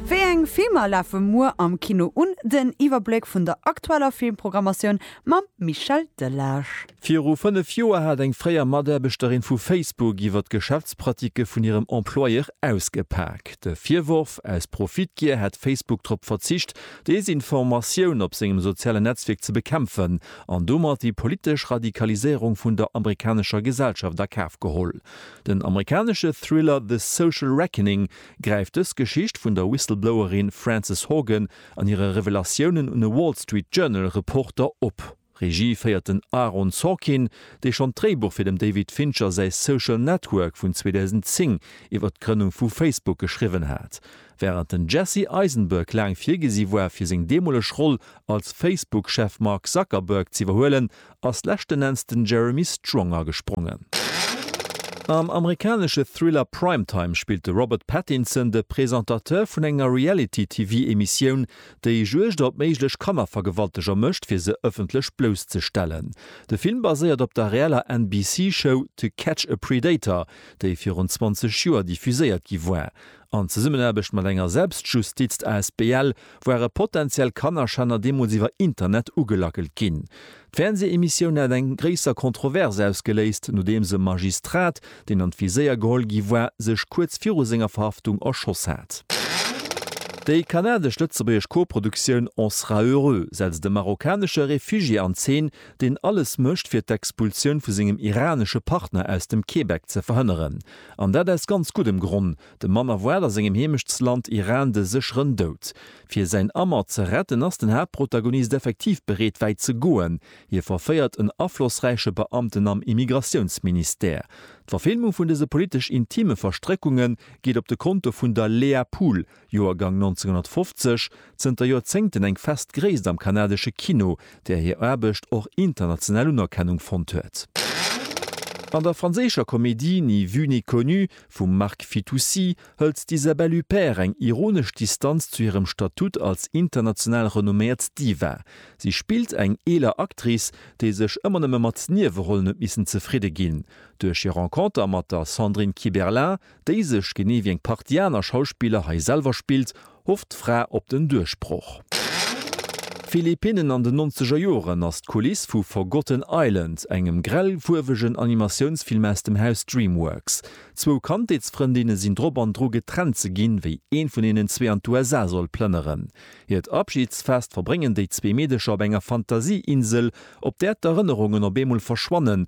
Wéi eng Filmer lafe muer am Kino un? Den Iwwerbléck vun der aktueller Filmprogrammatioun mam Michel Delage. Viru fënnef Joer hat eng fréier Mataarbechterin vu Facebook iwwer d'Geschäftspraticke vun hirem Employeur ausgepak. De Virworf, aus Profitgier hätt Facebook drop verzicht, Desinformatioun op sengem sozialen Netzwierk ze bekämpfen an domat déi politesch Radikaliséierung vun der amerikanescher Gesellschaft a Kaf geholl. Den amerikanesche Thriller The Social Reckoning gräift dës Geschicht vun der Whistleblowerin Frances Haugen an hire Revelatiounen un e Wall Street Journal Reporter op. Regie féiert den Aaron Sorkin, dee schonn d'Dréibuch fir dem David Fincher säi Social Network vun 2010 iwwert d'Grënnung vu Facebook geschriwwen hat. Wärend den Jesse Eisenberg laang virgesi war fir seng deemoleg Roll als Facebook-Chef Mark Zuckerberg z'iwwerhuelen, ass leschten Enns den Jeremy Strong agesprongen. Am amerikanesche Thriller Prime Time spillt de Robert Pattinson de Presentateur vun enger Reality-TV-Emissioun, déi Juegd op méiglech Kannervergewalteger mécht, fir se ëffentlech blousszestellen. De Film baséiert op der reeller NBC-Show To Catch a Predator, déi virun 20 Joer diffuséiert gi war. An Zesummenaarbecht mat enger Selbstjustizt asbl ware potentiell Kannerschänner deemools iwwer Internet ugelackelt ginn. D'Fernsehemissioun hat eng gréisser Kontrovers ausgeléist, nodeems e Magistrat, deen an d'Viséier geholl gi war, sech kuerz viru senger Verhaftung erschoss hat. Déi kanadesch-lëtzebuergesch Koproduktioun On sera heureux setzt e marokkanesche Refugié an Zeen, deen alles mécht, fir d'Expulsioun vu sengem iranesche Partner aus dem Québec ze verhënneren. An dat aus ganz guddem Gronn, Dem Mann erwaart a sengem Heemechtsland Iran de sécheren Doud. Fir säin Amer ze retten, ass den Haaptprotagonist effektiv bereet wäit ze goen. Hie verféiert en aflossräiche Beamten am Immigratiounsministère. D'Verfilmung vun dëse politesch intime Verstréckunge geet op de Konto vun der Léa Pool, Joergang 1950, zënter Joerzéngten eng fest Gréisst am kanadesche Kino, där hir Aarbecht och international Unerkennung fonnt huet. An der franséischer Komedie Ni vue ni connu vum Marc Fitoussi hëlt d'Isabelle Huppert eng ironesch Distanz zu hirem Statut als international renomméiert Diva. Si spillt eng eeler Actrice, déi sech ëmmer nëmme mat Niewerollen huet missen zefridde ginn. Duerch hir Renconter mat der Sandrine Kiberlin, déi sech, genee wéi eng Partie aner Schauspiller hei, selwer spillt, hofft d'Fra op den Duerchbroch. Philippinnen an den nonzeger Joren ass d'Kuliss vu Forgotten Island, engem grellfuerwegen Animatiounsfilm aus dem Haus Dreamworks. Zwou Kandheetsfrëndinne sinn drop an dru getrennt ze ginn, wéi een vun hinnen zwee an d'USA soll plënneren. Hiert Abschidsfest verbréngen déi zwee Meedecher op enger Fantasieinsel, op där d'Erënnerungen op eemol verschwannen